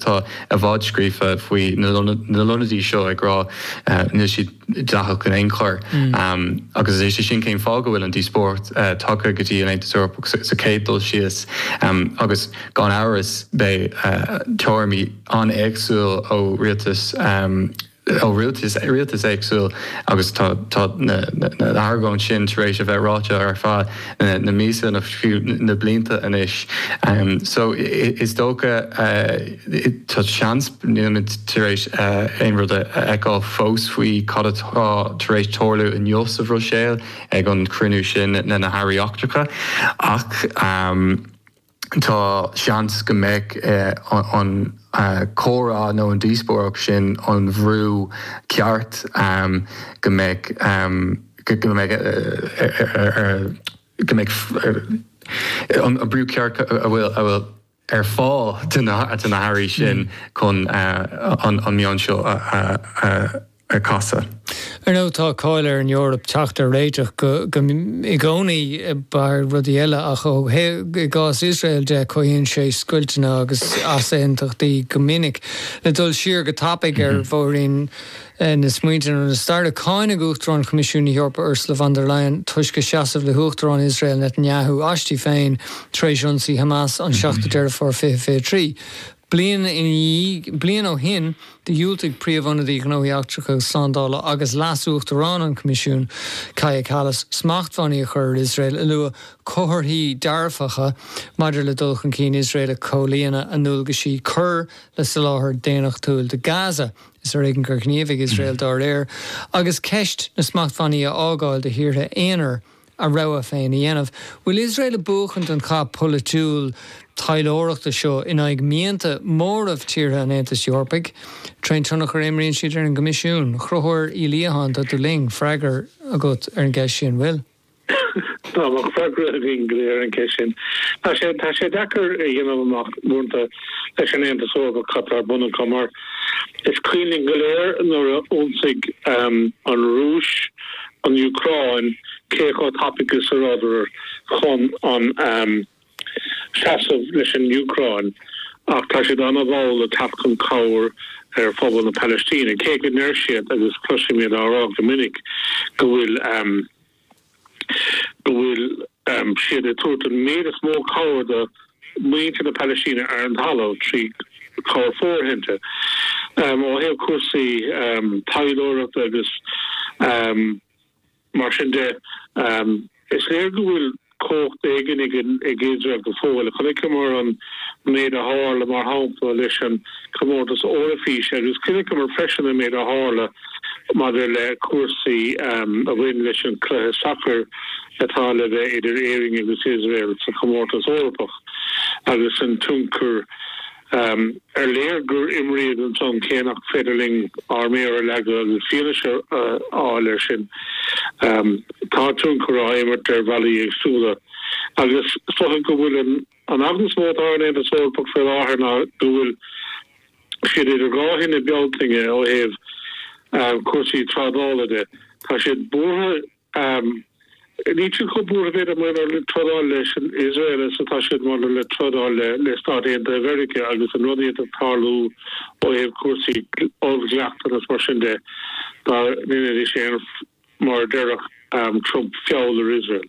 Atá i bhfad scríofa faoi na lonnaíochtaí seo ag rá níl siad dleathach in aon chor agus is é sin cén fáth go bhfuil an díospóireacht tagtha go dtí an Aontas Eorpach sa chéad dul síos agus gan amhras beidh tuairimí an-éagsúil ó rialtas ó rialtas éagsúil agus tá na hargóintí sin tar éis a bheith ráite ar feadh na míosa nó fiú na blianta anois so is dócha tá seans nílimid tar éis aon rud a fheiceáil fós faoi cad atá tar éis tarlú inniu sa Bhruiséil ag an chruinniú sin le na hairí eachtracha ach Tá seans go mbeidh an comhrá nó an díospóireacht sin, an bhrú ceart go mbeidh go mbeidh go mbeidh an brú ceart a bhfuil a bhfuil ar fáil do na hairí sin chun an meon seo a. a chasadh. Ar ndóigh tá cáil ar an Eoraip teacht ar réiteach go i gcónaí ar rudaí eile ach ó thaobh i gcás Iosrael de cothaíonn sé scoilteanna agus easaontaisí go minic. Le dul siar go tapaidh ar bhóithrín na smaointe nó na staire, cáineadh Uachtarán Choimisiún na hEorpa Ursula von der Leyen toisc a seasamh le hUachtarán Iosrael Netanyahu aisti féin tar éis ionsaí Hamas an 7ú Deireadh Fómhair 2023. Bliain inniu bliain ó shin do dhiúltaigh Príomh-Ionadaí Gnóthaí Eachtracha agus Slándála agus Leas-Uachtarán an Choimisiúin, Kaja Kallas, smachtbhannaí a chur ar Iosrael ag lua comharthaí dearfacha maidir le dul chun cinn Iosrael ag comhlíonadh a ndualgaisí cur le soláthar daonnachtúil do Gaza. Is ar éigean gur ghníomhaigh Iosrael dá réir agus ceist na smachtbhannaí a fhágáil do thíortha aonair a rogha féin a dhéanamh. Bhfuil Iosrael ag buachaint an chath polaitiúil taidhleoireachta seo in aghaidh mianta móraimh tíortha an Aontais Eorpaigh? Trén tionchar a imríonn siad ar an gCoimisiún? A Chonchubhair Uí Liatháin, tá tú linn, freagra agat ar an gceist sin, bhfuil? Tá, bheadh freagra againn go léir ar an gceist sin. Tá sé, tá sé deacair a dhéanamh amach uaireanta leis an Aontas Eorpach cad tá ar bun acu mar, Is cuimhin linn go léir nuair a ionsaigh an Rúis an Úcráin cé chomh tapaidh is a rabhadar chun ahm seasamh leis an Úcráin ach tá siad ana mhall le teacht chun cabhair ar phobal na Palaistíne cé go ndeir siad agus cloisimid á rá go minic go bhfuil go bhfuil siad ag tabhairt an méid is mó cabhair do mhuintir na Palaistíne ar an talamh trí chabhair fóirithinte ó thaobh cúrsaí taidhleoireachta agus mar sin de. Is léir go bhfuil. cumhacht éigin ag Iosrael go fóill. Chonaiceamar an méid a tharla, mar shampla, leis an gComórtas Eoraifíse agus chonaiceamar freisin an méid a tharla maidir le cúrsaí a bhain leis an chluiche sacair atá le bheith idir Éirinn agus Iosrael sa Chomórtas Eorpach agus an tionchar ar léir gur imríodh ansin cé nach féidir linn ár méar a leagadh agus fianaise a fháil air sin. Tá tionchar á imirt ar bhealaí éagsúla agus is dócha go bhfuil an eagla is mó atá ar an Aontas Eorpach faoi láthair ná go bhfuil siad idir dhá thine Bealtaine ó thaobh cúrsaí trádála de. Tá siad buartha. Am. Níl siad chomh buartha b'fhéidir maidir le trádáil leis an Iosrael is atá siad maidir le trádáil le Stáit Aontaithe Mheiriceá agus an rud a d'fhéadfadh tarlú ó thaobh cúrsaí oll-dhleachtanna is mar sin de. Dá ndéanfaidís aon, mar a déarfadh Trump, feall ar Iosrael.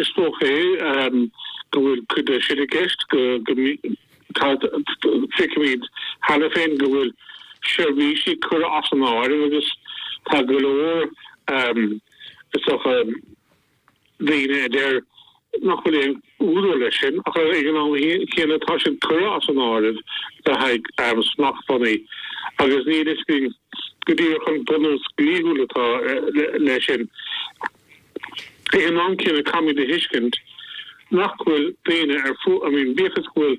Is dócha go bhfuil cuid de sin i gceist, go feicimid cheana féin go bhfuil seirbhísí curtha as an áireamh agus tá go leor is dócha daoine a deir nach bhfuil aon údar leis sin ach ag an am céanna tá siad curtha as an áireamh le haghaidh smachtbhannaí agus níl a fhios againn go díreach an bunús dlíthiúil atá leis sin. Ag an am céanna caithfimid a thuiscint nach bhfuil daoine ar fud, I mean bíodh is go bhfuil,